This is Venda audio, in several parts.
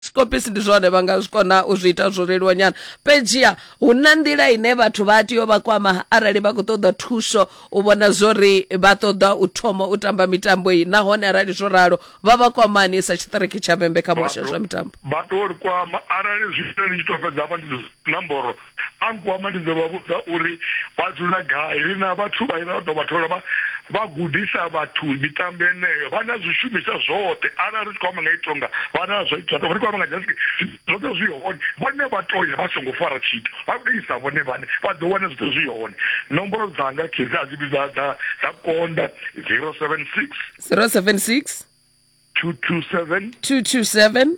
skopisi ndi zwone vha nga zwi kona u zwi ita zwo leluwa nyana fhedziha hu na nḓila ine vhathu vha tea u vha kwama arali vha khou ṱoḓa thuso u vhona zwori vha ṱoḓa u thoma u tamba mitambo iyi nahone arali zwo ralo vha vha kwamani sa tshiṱiriki tsha vhembe kha muhasho wa zwa mitambo vha to ri kwama arali zwi ita ni tshi to fhedza hafha ndi nomboro a nkwama ndi ḓo vha vhudza uri vha dzula gai ri na vhathu vha vha ḓo vha thola vha vha gudisa vhathu mitambo yeneyo vha na zwishumiswa zwoṱhe arali ri tshi khou amba nga itonga vha na zwo ita ri khou amba nga jasi zwoṱhe zwi hone vhone vha to ya vha songo fara tshithu vha tou isa vhone vhane vha ḓo wana zwoṱhe zwi hone nomboro dzanga khedzi a dzi vhidza dza dza konda 076 076 227 227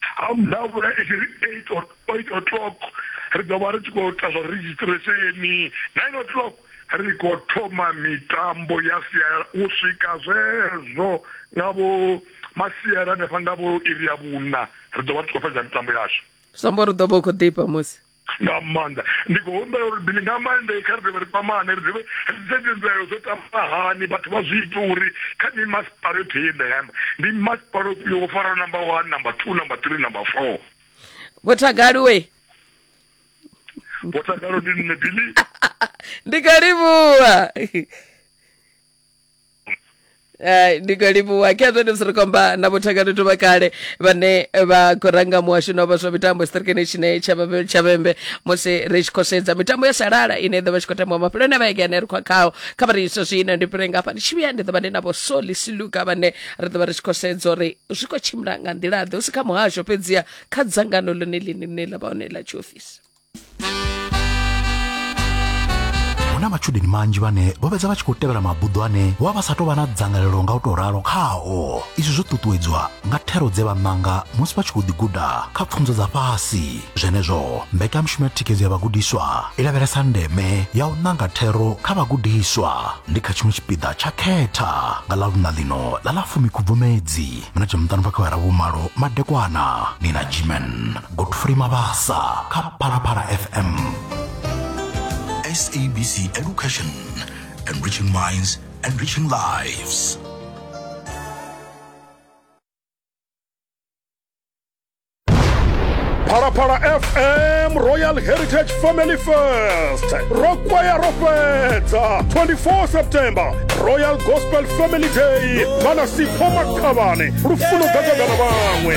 ha mudavhula i tshi ri eight eight o'clock ri ḓo vha ri tshi khou ita zwa registresheni nine o'clock ri khou thoma mitambo ya sialala u swika zwezwo nga vho masiela hanefha nga vho iri ya vhuna ri ḓo vha ri tshi khou fhedza mitambo yashu zwi amba uri u ḓo vha u khou ḓifha musi nga maanḓa ndi khou humbela uri bili nga maanḓa kha ri dovhe ri kwamane ri dovhe ri sedze mbilaelo dzo tamba hani vhathu vha zwi ita uri kha ni masipala yoṱhe ye nda yamba ndi masipala ofhio wo faraho number one number two number three number four vhotagaliwe vhotagalo ndi nne bili ndi kha livhuwa Eh, ndi khou livhuwa khe zwone zwi ri komba na vhuthakani thu vha kale vhane vha khou ranga muhasho na vha zwa mitambo siṱirikini tshine tsha Vhabe- tsha vhembe musi ri tshi khou sedza mitambo ya sialala ine ḓo vha tshi khou tambiwa mafheloni a vhege ane ri khou khao kha vha ri izwo zwino ndi fhire ngafha ndi tshi vhuya ndi ḓo vha ndi na vho soli siluka vhane ri ḓo vha ri tshi khou sedza uri zwi khou tshimbila nga nḓila ḓe hu si kha muhasho fhedziha kha dzangano ḽone ḽine ḽine ḽa vha hone ḽa tshiofisi hu na matshudeni manzhi vhane vho fhedza vha tshi khou tevhela mabuḓo ane vho vha vha sa tou vha na dzangalelo nga u tou ralo khao izwi zwo ṱuṱuwedzwa nga thero dze vha ṋanga musi vha tshi khou ḓiguda kha pfunzo dza fhasi zwenezwo mbekanyamushumo ya thikhedzo ya vhagudiswa i lavhelesa ndeme ya u ṋanga thero kha vhagudiswa ndi kha tshiṅwe tshipiḓa tsha khetha nga ḽa luṋa ḽino ḽa ḽa fumi khubvumedzi minete muṱanu bva kha vha ra vhumalo madekwana ni na jimen godfrey mabasa kha phalaphala fm sabc education enriching minds enriching lives phalaphala fm royal heritage family fest ro kwaya ro fhedza 24 september royal gospel family day vha na sipho makhavhane lufuno gagagana vhaṅwe